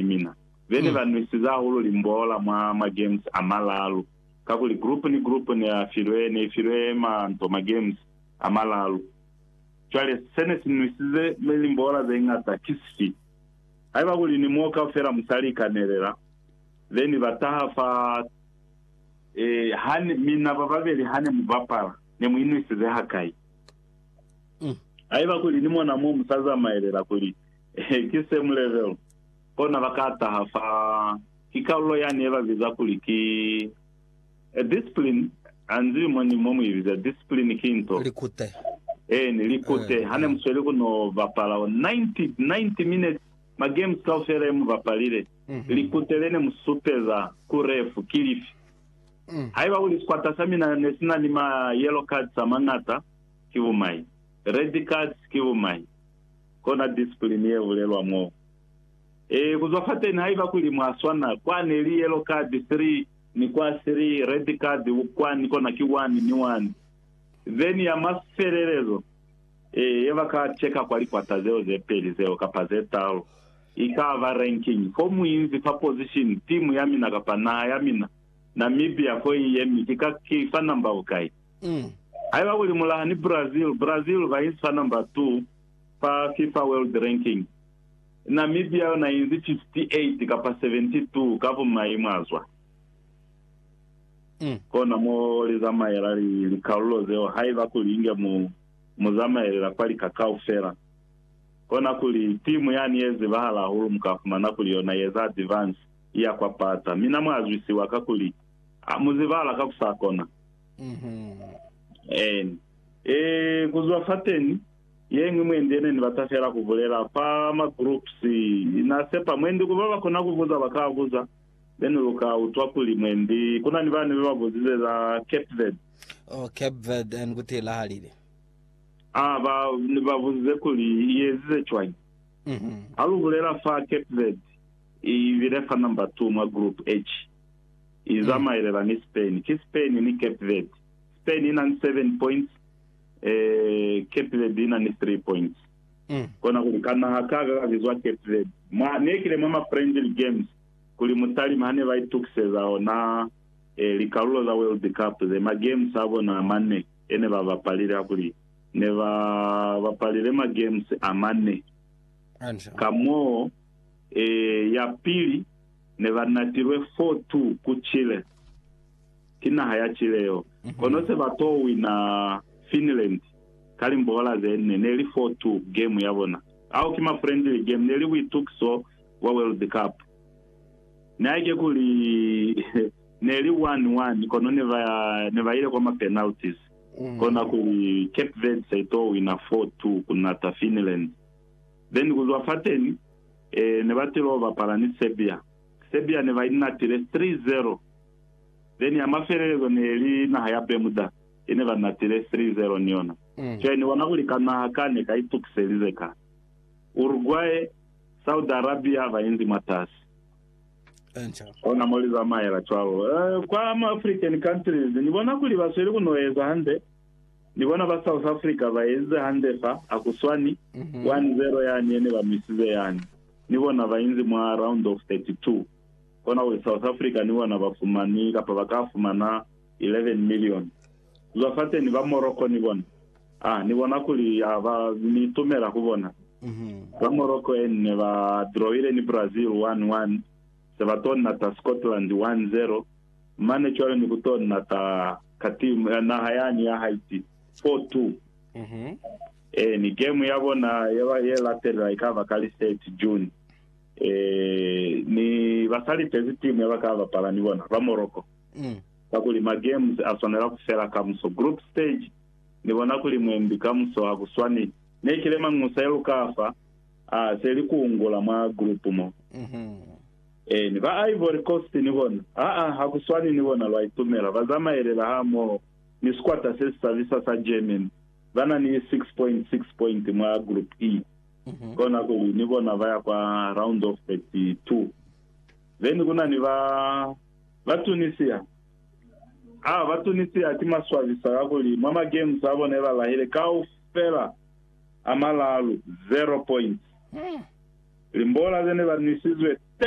ni mina. Be ne ba nwisize hahulu limbola mwa ma-games a malalu, kakuli group ni group ne a filwe, ne i filwe ma nto ma-games a malalu. Cwale, se ne si nwisize limbola ze ñata ki sifi? Haiba kuli ni mo kaufela mu sa likanelela, be ni ba taha fa. Ee, ha ne, mina ba babeli ha ne mu bapala, ne mu inwisize hakai? Haiba kuli ni mona mo mu sa zamaelela kuli Ki same level. Kona ba ka taha fa. Ki kalulo yani ye ba biza kuli ki A discipline. Ha nzibi mo ni mo mu i biza. Discipline ki nto. Likute. Eeni, likute. Ha ne mu sweli ku no bapala 90, 90 minutes, ma games kaufela ye mu bapalile, likute le ne mu supeza ku ref ki lifi? Haiba kuli sikwata sa mina ne si na ni ma yellow cards a mañata, ki bumai. Red cards, ki bumai. Kona discipline ye bulelwa mo. Ee, ku zwa fateni, haiba kuli mwa swana, kwani li yellow card three ni kwa three, red card kwani, kona ki one ni one. Then ya mafelelezo, ee, ye ba ka cheka kwa likwata zeo ze peli zeo kapa ze talu, i ka ba ranking. Fo mu inzi fa position, timu ya mina kapa naha ya mina, Namibia, fo i yemi, ki ka ki fa number bukai? Haiba kuli mu laha ni Brazil, Brazil ba inzi fa number two, Fa Fifa World Ranking, Namibia yona inzi 58 kapa 72 ka bumai mwazwa. Kona mo li zamaela likalulo zeo haiba kuli inge mu mu zamaelela kwa lika kaufela. Kona kuli timu yani ye zibahala hahulu muka fumana kuli yona yeza advance iya kwa pata. Mina mwazwisiwa kakuli mu zibahala kakusakona. Eeni. Ee, ku zwa fateni, ye ñwi mwendi yene ni bata fela ku bulela, fa ma groups, Na sepa mwendi ku ba ba kona ku buza, ba ka buza, then lu ka utwa kuli mwendi, ku na ni bani be ba buzize za Cape Verde. Oh, Cape Verde, and ku tilahalile? Ah, ba, ni ba buzize kuli, I ezize cwañi? Ha lu bulela fa Cape Verde, I bile fa number two mwa group H. i zamaelela ni Spain. Ki Spain ni Cape Verde. Spain ina ni 7 points, eh, Cape Verde ina ni 3 points. Mm. Kona kuli ka naha ka ka bizwa Cape Verde. Mwa nekile mwa ma friendly games kuli mutalima hane ba itukiseza ona eh, likalulo za World Cup ze, ma games a bona a mane ene ba bapalile hakuli ne ba bapalile ma games a mane. Hantle. Ka moo eh, ya pili ne ba natilwe fo tu ku Chile. Ki naha ya Chile yo. Kono se ba t'o wina Finland ka limbohola ze nne, ne li fo tu game ya bona. Ao ki ma friendly game, ne li buitukiso bwa World Cup. Nihaike kuli ne li 1-1, kono ne ba, ne ba ile kwa ma penalties. Kona kuli Cape Verde se i t'o wina fo tu ku nata Finland. Then ku zwa fateni, Ee, ne ba tilo bapala ni Serbia. Serbia ne ba inatile 3-0. Then ya mafelelezo ne li naha ya Bermuda, ye ne ba natile 3-0 ni yona. Cwale ni bona kuli ka naha ka ne ka itukiselize ka. Uruguay, Saudi Arabia ba inzi mwatasi. Ona mo li zamaela cwalo. Kwa ma African countries, ni bona kuli ba sweli ku no eza hande. Ni bona ba South Africa ba ezize hande fa, hakuswani, 1-0 yani yene ba misize yani. Ni bona ba inzi mwa round of 32. Konakuli South Africa ni bona ba fumani, kapa ba ka fumana, 11 million. Zwa fateni ba Morocco ni bona, ha ni bona kuli ha ba, ni itumela ku bona. Ba Morocco en ne ba drawile ni Brazil 1-1, se ba to nata Scotland 1-0. mane cwale ni ku to nata ka timu ya naha yani ya Haiti 4-2. Ee, ni game ya bona ye ba ye latelela ikaba ka li 30 June. Ee, ni ba sa litezi timu ya ba ka bapala ni bona, ba Morocco. Kakuli ma games a swanela ku fela kamuso. Group stage ni bona kuli mwembi kamuso ha ku swani ne ki le Mangusa ye lu ka fa, aa, se li ku ungula mwa group mo. Ee, ni ba Ivory Coast ni bona. Aa, ha ku swani ni bona, lwa itumela. Ba zamaelela hamoho ni sikwata se si sabisa sa Germany. Ba na ni 6.6 pointi mwa Group E. Kona kuli, ni bona ba ya kwa Round of 32. Then ku na ni ba, ba Tunisia. Aa, ba Tunisia ki maswabisa kakuli mwa ma games a bona ye ba lahile kaufela a malaalu, zero points. Limbola ze ne ba nwisizwe 10.